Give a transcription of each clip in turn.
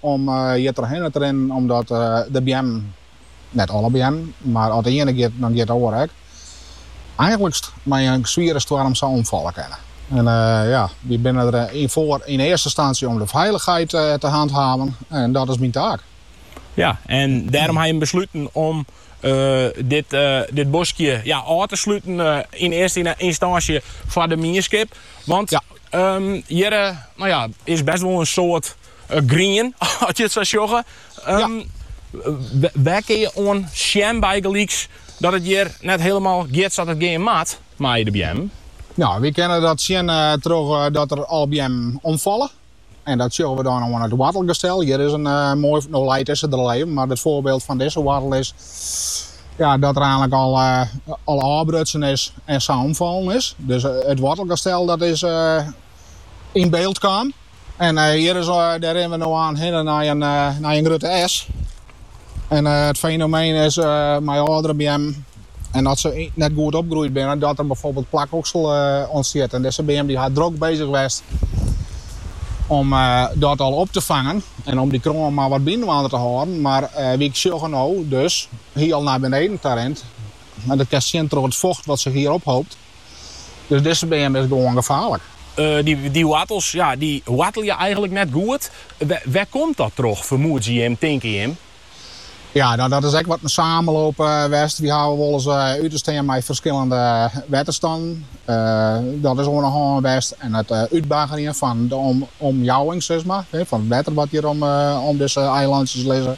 Om hjirtrochhinne te rinnen omdat de beammen, net alle beammen, mar as de iene giet, dan giet de oare ek, eigentlykst mei in swiere stoarm sa omfalle kinne. En ja, wy binne der foar yn earste ynstânsje om de feilichheid te hanthaven en dat is myn taak. Ja, en dêrom ha jim besluten om dit, dit boskje ja ôf te sluten yn earste ynstânsje foar de mienskip, want hjir no ja is best wol in soad Grien, as je it sa sjogge. Wêr kinne je oan sjen bygelyks dat it hjir net hielemaal giet sa't it gean moat mei de beammen? Nou, wy kinne dat sjen troch dat der al beammen omfalle. En dat sjogge we dan oan it woartelgestel. Hjir is in moai, no leit dizze der al even, mar it foarbyld fan dizze woartel is ja dat er eintlik al ôfbrutsen is en sa omfallen is. Dus it woartelgestel dat is. yn byld kaam. En eh, hjir is, eh, dêr rinne we no aan hinne nei in, eh, nei in grutte esk. En eh, it fenomeen is eh, mei âldere beammen en dat se net goed opgroeid binne, dat er bijvoorbeeld plakoksel eh, ûntstiet. En dizze beam die hat drok bezig west om eh, dat al op te fangen en om die kroan maar wat byinoar te hâlden. Mar eh, wy sjogge no dus hielendal nei beneden ta rint. En dat kinst sjen troch it focht wat zich hier ophoopt. Dus dizze beam is gewoan gefaarlik. Dy woartels ja dy woartelje eigenlik net goed. Wêr komt dat troch, fermoedsje jim, tinke jim? Ja, dat is ek wat in samenloop west. Wy hawwe wolris út te stean mei ferskillende wetterstannen. Dat is oan de hân west en it útbaggerjen fan de omjouwing, sis mar, fan it wetter wat hjir om dizze eilantsjes lizze.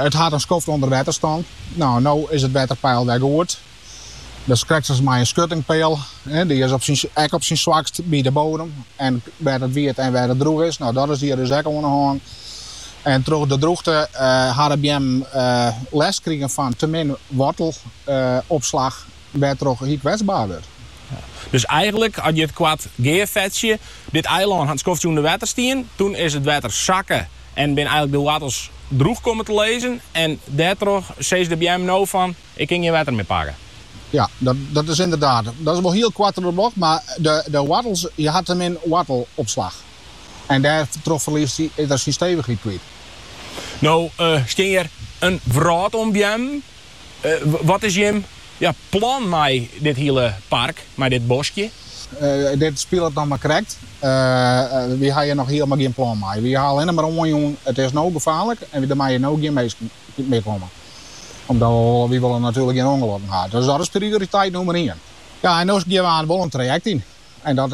It hat in skoft ûnder wetter stien. No, no is it wetterpeil wer goed. Dat is krekt as mei in skuttingpeal. Dy is ek op syn swakst by de bodem en wêr't it wiet en wêr't it droech is. No, dat is hjir dus ek oan de hân. En troch de droechte ha de beammen lêst krigen fan te min woartelopslach, wêrtroch hy kwetsbaar wurdt. Dus eigenlik, as je it koart gearfetsje, dit eilân hat skoftsje ûnder wetter stien, toen is it wetter sakke en binne eigenlik de woartels droech kommen te lizzen en dêrtroch sizze de beammen no fan, Ik kin gjin wetter mear pakke. Ja, dat is ynderdaad. Dat is wol hiel koart troch de bocht, mar de woartels, hy hat te min woartelopslach. En dêrtroch ferliest er syn stevichheid kwyt. No stean hjir in wrâld oan beammen. Wat is jim ja plan mei dit hiele park, mei dit boskje? Dit spilet noch mar krekt. Wy ha hjir noch hielemaal gjin plan mei. Wy ha allinne mar oanjûn, it is no gefaarlik en der meie no gjin minsken meekomme. Omdat wy wol natuerlik gjin ûngelokken ha. Dus dat is prioriteit nûmer ien. Ja, en no gean we no wol in trajekt yn. En dat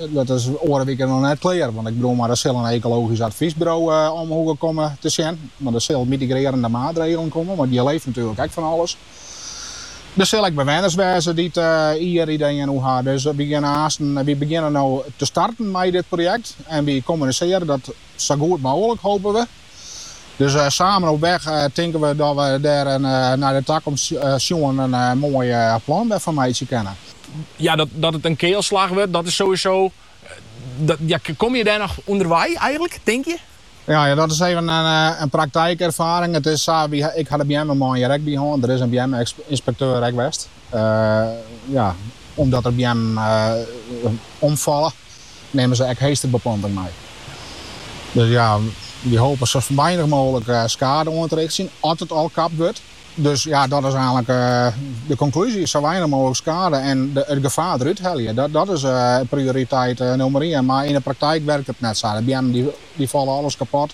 dat is oare wike noch net klear. Want ik bedoel mar, der sil in ekologysk advysburo omheech komme te sjen. Want der sil mitigrearjende maatregelen komme, want je leeft natuerlik ek fan alles. Der sil ek bewenners wêze dy't hjir ideeën oer ha. Dus wy gean haasten. Wy begjinne no te starten mei dit projekt en wy kommunisearje dat sa goed mooglik, hope we. Dus samen op weg tinken we dat we dêr nei de takomst sjoen in moai plan fan meitsje kinne. Ja, dat it in kealslach wurdt, dat is sowieso. Ja, komme je dêr noch ûnderwei eigenlik, tink je? Ja, dat is even in praktykûnderfining. It is sa, ik ha de beammenman hjir ek by hân. Der is in beamme-ynspekteur ek west. ja, omdat der beammen omfalle, nimme se ek heesterbeplanting mei. Dus ja, wy hope sa weinich mooglik skade oan te richtsjen as it al kapt wurdt. Dus ja, dat is eigenlik de konklúzje, sa weinich mooglik skade en it gefaar derút helje. Dat, dat is eh, prioriteit eh, nûmer ien. Mar yn de praktyk wurket it net sa. De beammen dy, dy falle alles kapot.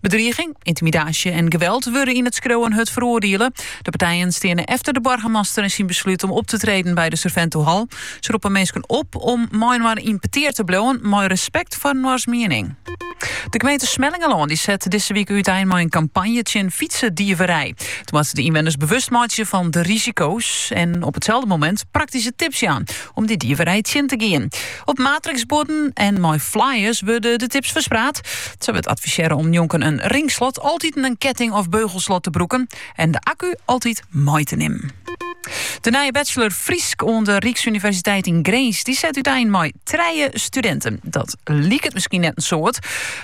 Bedriging, intimidaasje en geweld wurde yn it skriuwen hurd feroardiele. De partijen steane efter de boargemaster en syn besluit om op te treden by de Surventohal. Se roppe minsken op om mei-inoar yn petear te bliuwen, mei respekt foar inoars miening. De gemeente Smellingerlân dy set dizze wike útein mei in kampanje tsjin fytsedieverij. Dy moat sa de ynwenners bewust meitsje fan de risiko's en op itselde momint praktyske tips jaan om dieverij tsjin te gean. Op matriksbuorden en mei flyers wurde de tips ferspraat. Sa wurdt advisearre om njonken in ringslot altyd in ketting- of beugelslot te brûken en de akku altyd mei te nimmen. De nije bachelor Frysk oan de Ryksuniversiteit yn Grins dy set útein mei trije studinten. Dat liket miskien net in soad,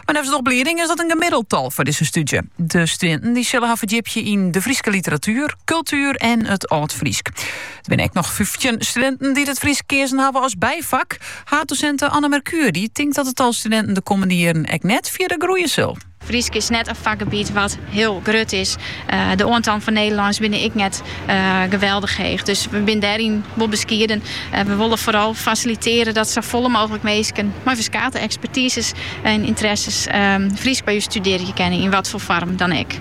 mar neffens de oplieding is dat in gemiddeld tal foar dizze stúdzje. De studinten dy sille har ferdjipje yn de Fryske literatuer, kultuer en it Aldfrysk. Der binne ek noch fyftjin studinten dy't it Frysk keazen hawwe as byfak. Haaddosint Anne Merkuur dy tinkt dat it tal studinten de kommende jierren ek net fierder groeie sil. Frysk is net in fakgebiet wat hiel grut is. Eh, de oantallen fan Nederlânsk binne ek net eh, geweldich heech. Dus we binne dêryn wol beskieden. Eh, we wolle foaral fasilitearje dat safolle mooglik minsken mei ferskate ekspertizes en ynteresses ehm, Frysk by ús studearje kinne, yn wat foar foarm dan ek.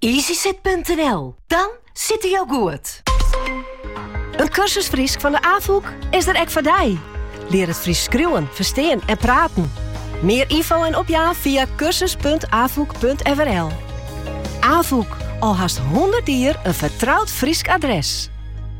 Easysit.nl, dan sitte jo goed! In kursus Frysk fan de Afûk is der ek foar dy. Lear it Frysk skriuwen, ferstean en praten. Mear ynfo en opjaan fia kursus.afuk.frl. Afûk, al hast hûndert jier in fertroud Frysk adres.